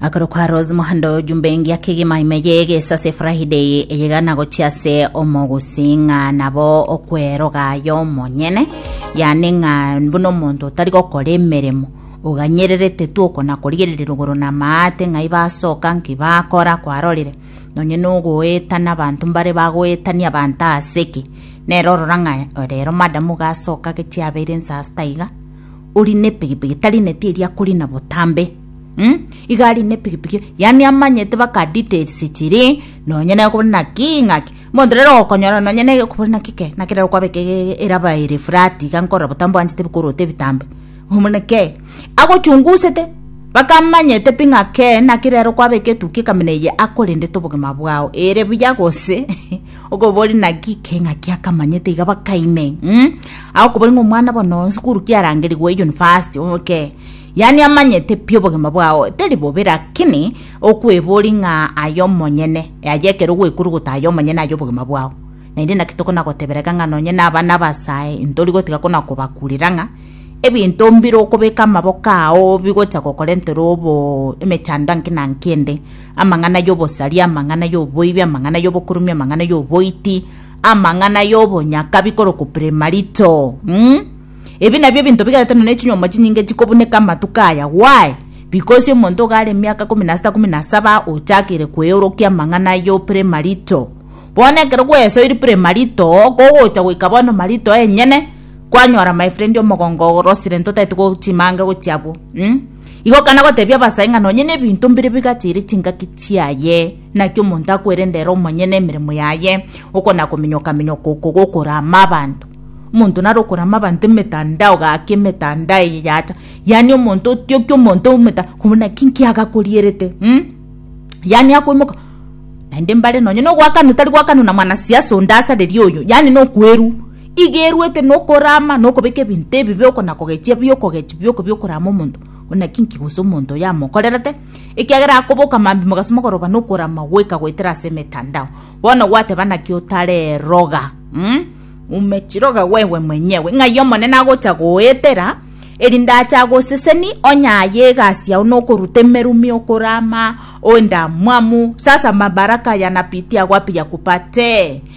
Akoro kwa Rose Muhando jumbe ngia kegima ime ye gesase Friday eyegana gochia ase omogusi ng'a nabo okweroga yo monyene yani ng'a buna omonto otari gokora emeremo oganyererete tu okona korigereria rogoro na maate ng'ai basoka nki bakora kwarorire nonye nogoetana abanto mbare bagoetania abanto ase ki nere orora ng'a rero madam gasoka gechiabeire nsaa sita iga Ori nepigipigi tarineti eria akorina botambe mm? iga ari nepigipigi yani amanyete baka details chiri nonye naye okobona naki ng'aki monto rero okonyora nonye naye okobona naki ke naki rero kwabeka ege- eraba ere flat iga nkorora botambe oanchete bikorota ebitambe omona ke agochungusete baka amanyete pi ng'a ke naki rero kwabeka etukia ekamina eye akorendete obogima bwao ere buya gose okobori naki keng'a kiakamanyete iga bakaime mm? akobori ng'a omwana bono sukuru kiarangerigwe university oke yani amanyete pi obogima bwao teri bobe lakini okwebori ng'a aye omonyene aye ekero ogwekuruguta aye omonyene aye obogima bwao naende naki tokona gotebereka ng'a nonye na abana abasae ntori gotiga kona kobakurera ng'a ebinto mbire okobeka amaboko ao bigocha gokora entoro obo emechando anki na anki ende amang'ana y'obosaria, amang'ana y'oboibi, amang'ana y'obokurumia, amang'ana y'oboiti, amang'ana y'obonyakabi korokwa premarito mm? ebi nabio ebinto bigarete nonya chinyomba chinyinge chikobuneka amatuko aya why because omonto iga are emiaka komi na sita komi na saba ochakeire kweorokia amang'ana yo premarito bono ekero gwesoiri premarito kogocha goika bono marito enyene kwanyora my friend omogongo orosire ntotaete go chimange gochia abwo mm? Igo akana gotebia abasae ng'a nonye nebinto mbire bigacheire chingaki chiaye, naki omonto akwerende ere omonyene emeremo yaye, oko nakominyoka-minyoka oko gokorama abanto. Omonto nare okorama abanto emetandao gaki emetandao eye yacha, yaani omonto otiokia omonto ometa koba naki nki agakorierete um yaani akoimoka naende mbare nonye nogoakanwa tari goakanwa na mwanasiasa onde asareria oyo yaani nokoerwa Iga eruete nokorama nokobeka ebinto ebibe oko na kogechia bi okogechia bi oko bi okorama omonto one naki inki gose omonto oyo amokorerete, ekiagera akoboka mambia mogasi mogoroba nokorama goika goetera ase emetandao. Bono gwateba naki otareroga? Umm ume chiroga gwewe mwenyewe ng'ai Omonene agocha goetera erinde ache agoseseni onye aye egasi yao nokoruta emerumi okorama oende amwamu sasa mabaraka yanapitia wapi yakupatee.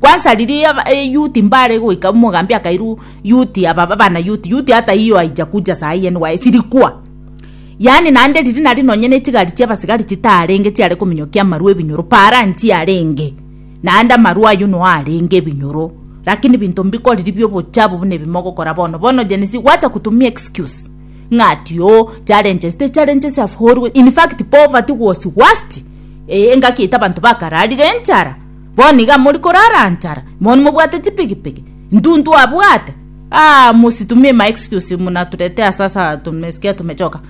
Kwansa riria aba eyouth mbare goika omogambi akairu youth aba abana youth youth hata hiyo haijakuja saa hii NYS sirikwa yaani naende riria nari nonye ne chigari chia abasigari chitarenge chiare kominyokia amarwa ebinyoro para nchiarenge naende amarwa aywo no arenge ebinyoro lakini binto mbikoriri bia obochabu buna ebi mogokora bono bono Gen Z gwacha kotumia excuse ng'a ati oo challenges the challenges have always in fact poverty was worst eh engaki yaito abanto bakararire enchara Bono iga mori korara nchara, bono mobwate chipigipigi, intwe intwe abwate. Ah, mositumie ma excuse muna turete ase ase tumesikia tumechoka.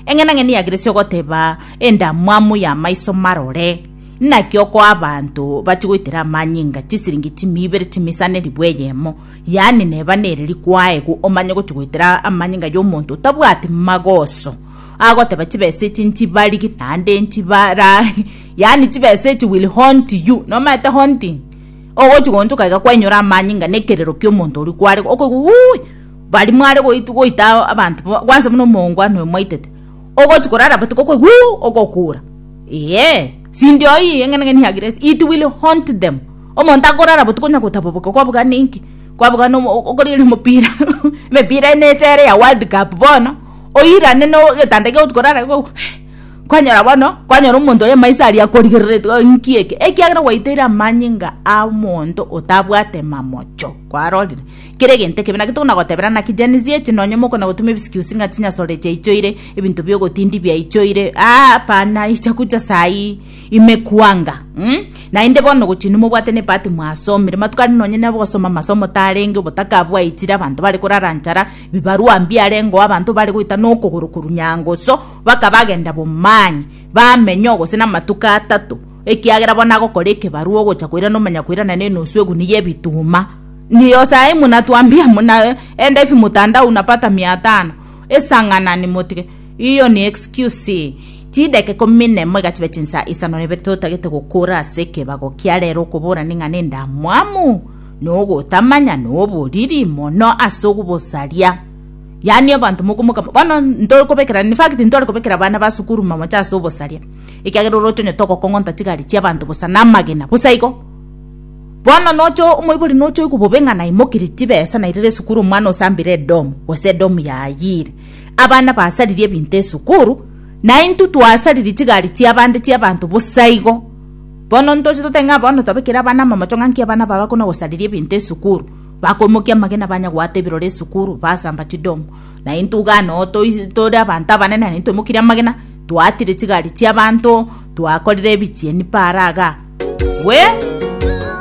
Eng'ena ng'eni yageresi ogoteba endamwamu ya maiso marore. Naki oko abanto bachi goitera amanyinga chisiringi chimi ibere chimisane ribu eyemo. Yani neba nere rikwaegu omanye gochi goitera amanyinga yomonto otabwati magoso. Agoteba chibesa echi nchibarigi naende nchibara Yaani chibesa echi will haunt you, nomaete haunting. Ogochi gonchoka iga kwainyora amani inga nekerero kiomonto oria kware okoigwa wuuii bari mware goit goita abanto bo kwansa buna omoongwana oyo mwaitete. Ogochi korara botuko okoigwa wuuh ogokura. Eeh sindi oyi eng'ana ng'ani ya grace it will haunt them. Omonto akorara botuko onya gotaboboka kwabugana inki? Kwabugana omo okorigereria omopira emepira ene echa ere ya world cup bono oirane no getanda ekegochi korara iga okoigwa eh. Kwanyora bono, kwanyora omonto oye maiso aria akorigereretie, o inki eke? Ekiagera gwaiteire amanyinga a omonto otabwate mamocho. Kwarorire? Kera egento ekebe, naki tokona gotebera naki Gen Z echi, nonye mokona gotuma ebiscusi ng'a chinyasore chiaichoire, ebinto bia ogotindi biaichoire, aa hapana, echaku chia saii imekwanga, mm? Naende bono gochia inwe mobwate ne ebahati mwasomire, matuko aria nonye na gosoma amasomo tarenge, obotaka bwaichire, abanto bare korara nchara, bibarua mbiarengo, abanto bare goita na okogoro korwa nyangoso, Bakabagenda b'omwanya, bamenya oo gose namatuko atato, ekiagera bono agokora ekebarua ogocha koirana omonyakoirana nenusu eguni y'ebituma. Ndiyo saii munatwambia muna enda ifi mutandao unapata mia tano esang'anani motige iyo ni excuse. Chideka ikomi nemo egachiba chinsa isano nebe totagete gokora ase ekebago kia rero okobora ning'a nendamwamu nogotamanya noboriri mono ase ogobosaria. Yaani abanto mokomoka bono ntorikobekera in fact ntwarekobekera abana ba sukuru mamocha ase obosaria ekiagera oroche onye togokong'onta chigari chiabanto bosa na amagena bosa igo bono nocha omoibori nocha oigwa bobe ng'a naimokirie chibesa nairire esukuru omwana osambire edomu gose edomu yayiire abana basaririe ebinto esukuru na intwe twasaririe chigari chia abande chia abanto bosa igo bono ntoche totebe ng'a bono twabekire abana amamocho ng'a nki abana aba bakona gosariria ebinto esukuru. Bakomokia amagena banyagwata ebirore esukuru, basamba chidomu. Na intwe iga noo tore abanto abanene na intwe mokirie amagena, twaatire chigari chi'abanto, twakorire ebichieni paara iga. Gwe!